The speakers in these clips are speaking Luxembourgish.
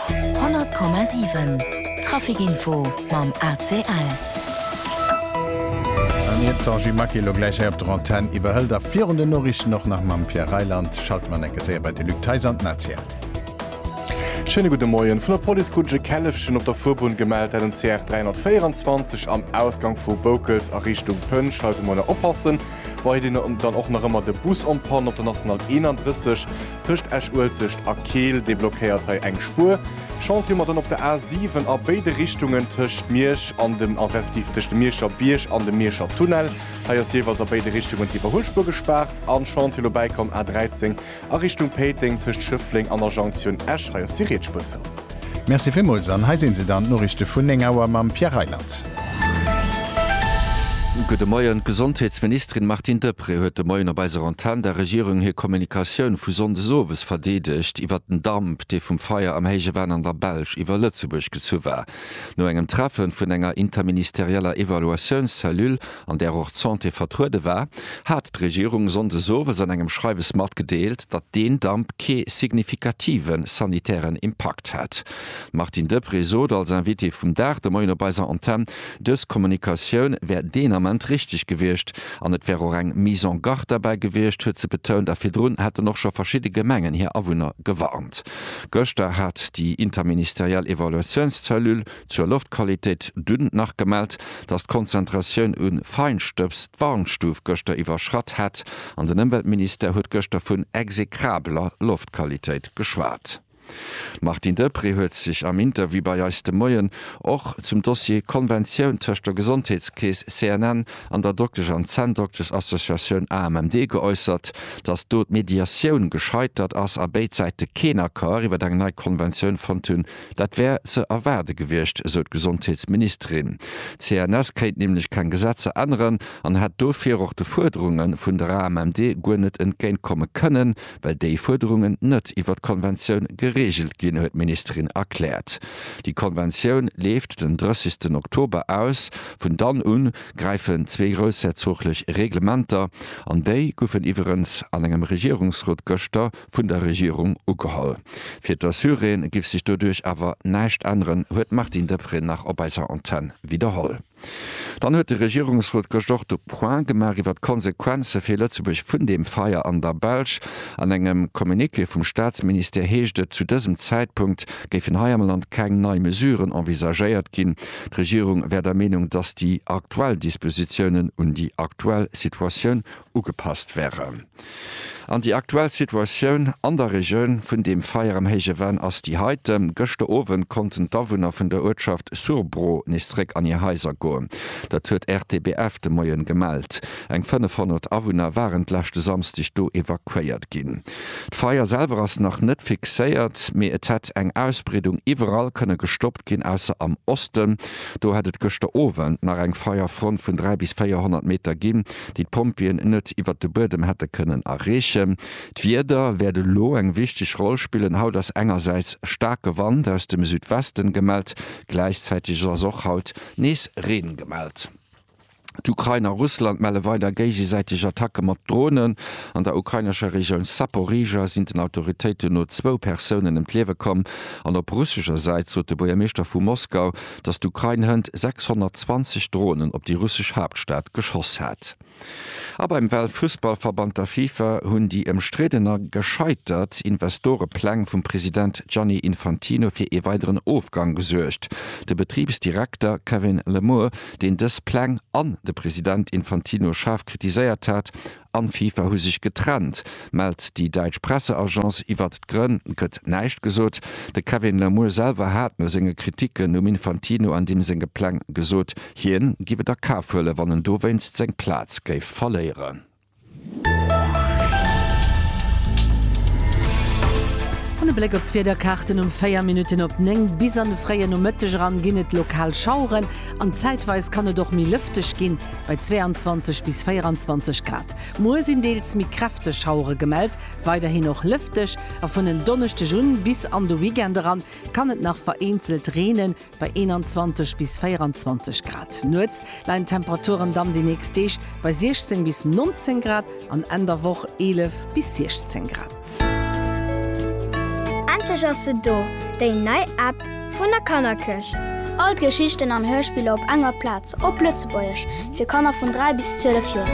100,7 Trafic Info mam ACL. An iert d'Angie Maquet elo gläich hei op der Antenn iwwerhëlt a virun den Noriichten och nach mam Pierre Reyland, schalte mer an enker séier bei de Luc Theis an d'Nazia. Schéine gudde Moien. Vun der Police krut ech e Källefchen op der Fuerbunn gemellt, dat um CR 324 am Ausgank vu Boukels a Richtung Pënsch. Hei soll een mol nach oppassen. Weiderhin dann och nach ëmmer de Bus en panne op der National 31. Tëscht Esch-Uelzecht a Keel deblockéiert hei eng Spuer. Chantier mat an op der A 7 a béide Richtungen tëscht Miersch an dem, also respektiv tëscht dem Mierscher Bierg an dem Mierscher Tunnel. Hei ass jeeweils a béide Richtungen d'Iwwerhuelspuer gespaart. An Chantier elo bäikomm A 13 a Richtung Péiteng tëscht Schëffleng an der Jonktioun Esch. Hei ass déi riets Spuer zou. Merci villmools an hei sinn se dann, d'Noriichte vun 9 Auer mam Pierre Reyland. Gudde Moien. D'Gesondheetsministerin Martine Deprez huet de Moien op eiser Antenn der Regierung hir Kommunikatioun vu Sonndes owes verdeedegt iwwert den Damp, dee vum Feier am Héije Venn an der Belsch iwwer Lëtzebuerg gezu war. No engem Treffen vun enger interministerieller Evaluatiounscellule, an där och d'Santé vertruede war, hat d'Regierung sonndes owes an engem Schreiwes matgedeelt, datt deen Damp kee signifikative sanitären Impakt hätt. D'Martine Deprez sot als Invitée vum Dag de Moien op eiser Antenn, dës Kommunikatioun wär deen Ament richteg gewiescht an et wär och eng Mise en garde derbäi gewiescht, huet se betount. A virdrun hätten och scho verschidde Gemengen hir Awunner gewarnt. Gëschter hat déi interministeriell Evaluatiounscellule, Zur Loftqualitéit dunn nach gemellt, dass d'Konzentratioun un Feinstëbs d'Warnstuf gëschter iwwerschratt hätt an den Ëmweltministère huet gëschter vun execrabeler Loftqualitéit geschwat. D'Martine Deprez huet sech am Interview bei eis de Moien och zum Dossier Konventioun tëscht der Gesondheetskeess CNN an der Dokters an Zänndokters-Associatioun AMMD geäussert, dass do d'Mediatioun gescheitert ass a béid Säite keen Accord iwwer eng nei Konventioun fonnt hunn. Dat wär ze erwaarde gewiescht, esou d'Gesondheetsministerin. D'CNS kéint nämlech keng Gesetzer änneren an hätt dofir och de Fuerderunge vun der AMMD guer net entgéintkomme kënnen, well déi Fuerderungen net iwwer d'Konventioun gereegelt ginn, huet d'Ministerin erkläert. Déi Konventioun leeft den 30 Oktober aus. Vun dann u gräifen zwee groussherzooglech Reglementer an déi goufen iwwerens an engem Regierungsrot gëschter vun der Regierung ugeholl. Fir d'Assuréen giff sech doduerch awer näischt änneren, huet d'Martine Deprez nach op eiser Antenn widderholl. Dann huet de Regierungsrot gëscht och de Point gemaach iwwer d'Konsequenze fir Lëtzebuerg vun deem Feier an der Belsch. An engem Communiqué vum Staatsministère heescht et, zu dësem Zäitpunkt géifen hei am Land keng nei Mesuren envisagéiert ginn. D'Regierung wär der Meenung, datt déi aktuell Dispositiounen un déi aktuell Situatioun ugepasst wären an déi aktuell Situatioun an der Regioun vun deem Feier am Héije Venn ass déi heite. Gëschter Owend konnten d'Awunner vun der Uertschaft Surbro nees zeréck an hir Haiser goen. Dat huet RTBF de Moien gemellt. Eng 500 Awunner waren d'leschte Samsdeg do evakuéiert ginn. D'Feier selwer ass nach net fixéiert, mee et hätt eng Ausbreedung iwwerall kënne gestoppt ginn, ausser am Osten. Do hätt et gëschter Owend nach eng Feierfront vun 300 bis 400 Meter ginn. déi d'Pompjeeën net iwwert de Buedem hätte kënnen erreechen. D'Wieder wäert elo eng wichteg Roll spillen. Haut ass engersäits staarke Wand aus dem Südwesten gemellt, gläichzäiteg ass och haut nees Reen gemellt. D'Ukrain a Russland melle weider géigesäiteg Attacke mat Dronen. An der ukrainescher Regioun Saporizhzhia sinn den Autoritéiten no zwou Persounen ëm d'Liewe komm an op russescher Säit sot de Buergermeeschter vu Moskau, datt d'Ukrain hënt 620 Dronen op déi russesch Haaptstad geschoss hat. A beim Weltfussballverband, der Fifa, hunn déi ëmstridden a gescheitert Investorepläng vum President Gianni Infantino fir ee weideren Ofgang gesuergt. De Betribsdirekter Kevin Lemure, deen dës Pläng an de President Infantino schaarf kritiséiert hat, an d'FIFA hu sech getrennt, mellt déi däitsch Presseagence. Iwwert d'Grënn gëtt näischt gesot. De Kevin Lamour selwer hat no senge Kriticken um Infantino an deem senge Pläng gesot, hien giff et a Kaf huelen, wann en dowéinst seng Plaz géif verléieren. An e Bléck op d'Wiederkaarten, Um 4 Minutten op 9 bis an de fréie Nomëtteg eran ginn et lokal Schaueren an zäitweis kann et och méi lëfteg ginn. bei 22 bis 24 Grad. Muer sinn deels méi kräfteg Schauere gemellt, weiderhin och lëfteg a vun en Donneschdeg un bis an de Weekend eran kann et nach vereenzelt reenen, bei 21 bis 24 Grad. Nuets leien d'Temperaturen dann déi nächst Deeg bei 16 bis 19 Grad an Enn der Woch 11 bis 16 Grad. Endlech ass se do, déi nei App vun der Kannerkirch! All d'Geschichten an Hörspiller op enger Plaz, op Lëtzebuergesch, fir Kanner vun 3 bis 12 Joer.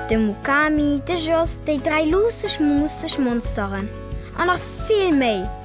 De Mukami, de Jos, déi dräi luusseg, muusseg Monsteren a nach vill méi!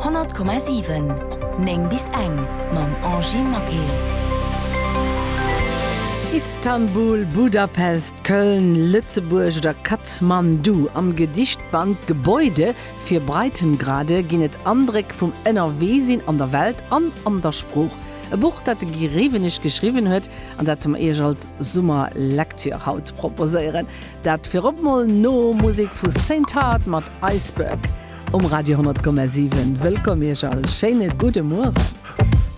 100,7 9 bis eng mam Angie Maquet. Istanbul, Budapest, Köln, Lëtzebuerg oder Kathmandu, am Gedichtband Gebäude für Breitengrade ginn et Andréck vum Ënnerweesinn an der Welt an an der Sprooch. E Buch, dat de Guy Rewenig geschriwwen huet an dat mer Iech als Summerlektür haut proposéieren. Dat virop mol no Musik vu Saint Heart mat Iceberg um Radio 10,7. Wëllkomm iech all, schéine gudde Mueren.